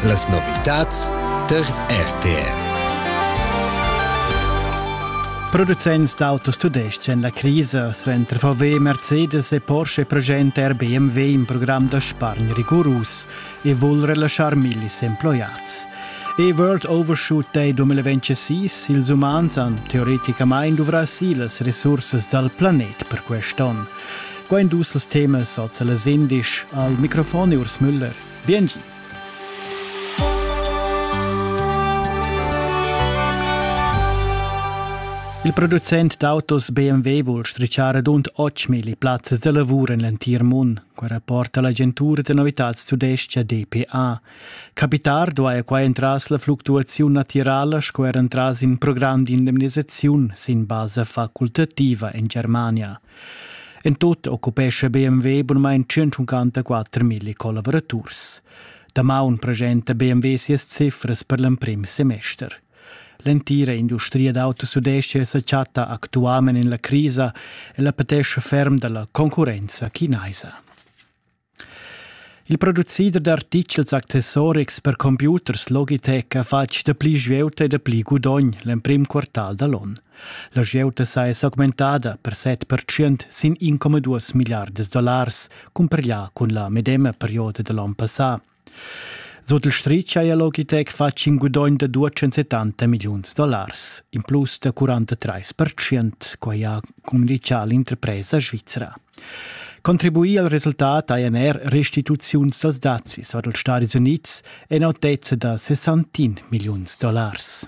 Las novitads tar RTR. Producents d'autos tudestgs en la crisa suenter VW, Mercedes e Porsche presenta er BMW in program da spargn rigurus e vul relaschar millis emploiads. E-World Overshoot Day 2026, ils umans han teoreticamain duvrà si las resursas dal planet per quest onn. Quain dus temas ha las indisch al microfon Urs Müller. Biengi! Il producent d'autos BMW vuol strichare dunt 8.000 plazzas da lavur en l'entir mund, qua rapporta l'agentura da novitads tudescha DPA. Capitar duaja qua entras la fluctuaziun natirala sco er entras in program d'indemnisaziun sin basa facultativa en Germania. En tut occupescha BMW bunamain 154.000 collavuraturs. Damaun presenta BMW sias cifras per l'emprim semester. L'entira industria d'autos sudestia sa chatta actualment en la crisa e la patescha ferm dalla concurrenza chinaisa. Il producider d'artichels accessorics per computers Logitech ha fatg dapli svieuta e dapli gudogn l'emprim quartal da l'onn. La svieuta sa è s'augmentada per 7% sin 1,2 milliardas dollars cumpareglià cun la medema perioda da l'onn passà. Sut il stritg haja l'Ogitec fatg in gudogn da 270 milliuns dollars, in plus da 43 percent, quai ha communitgà l'interpresa svizra. Contribuì al resultat hajan er restituziuns dals dazis or dals Stadis Unids en autezza da 61 milliuns dollars.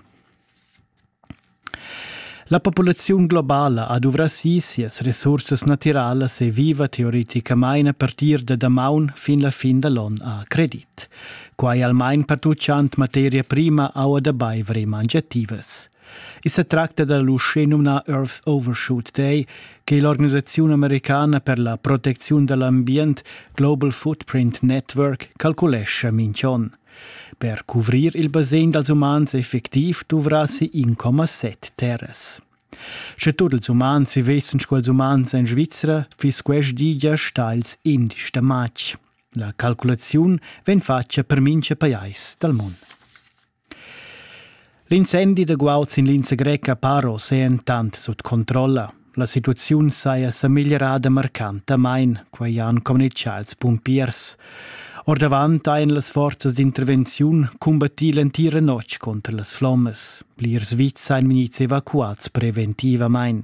La populaziun globala ha duvrà si sias resursas natiralas e viva teoreticamain a partir da damaun fin la fin da l'onn a credit. Quai almain pertutgant materia prima, aua da baiver e mangiativas. I sa tracta da l'uschenumnà Earth Overshoot Day che l'organisaziun americana per la protecziun da l'ambient Global Footprint Network calculescha mintg onn. Per cuvrir il basegn dals umans effectiv duvrassi 1,7 terras. Sche tut ils umans vessen quels umans en Svizra, fiss quest di gia stals indisch da matg. La calculaziun vegn fatga per mincha pajais dal mund. L'incendi da guaud sin linsa greca Paro s'è entant sut controlla. La situaziun saja sa migliorada marcantamain, quai han communitgà ils pumpiers. Ordavant hajan las forzas d'intervenziun cumbattì l'entira notg contra las flommas. Plirs vits han vegnids evacuads preventivamain.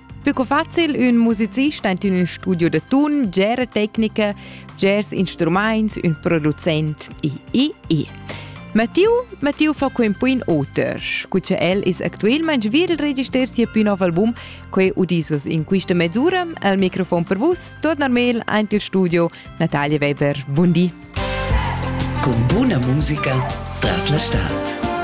Più facil ün musicist aint in ün studio da tun, gera tecnica, gers instrumaints, ün producent e e e. Mattiu, Mattiu fa quei un po in oter. Cuce el is actualmente vil register sia più nuovo album, quei udisus in questa mezz'ora, al microfon per vus, torna mail aint il studio, Natalia Weber, buondì. Con buona musica tras la stad.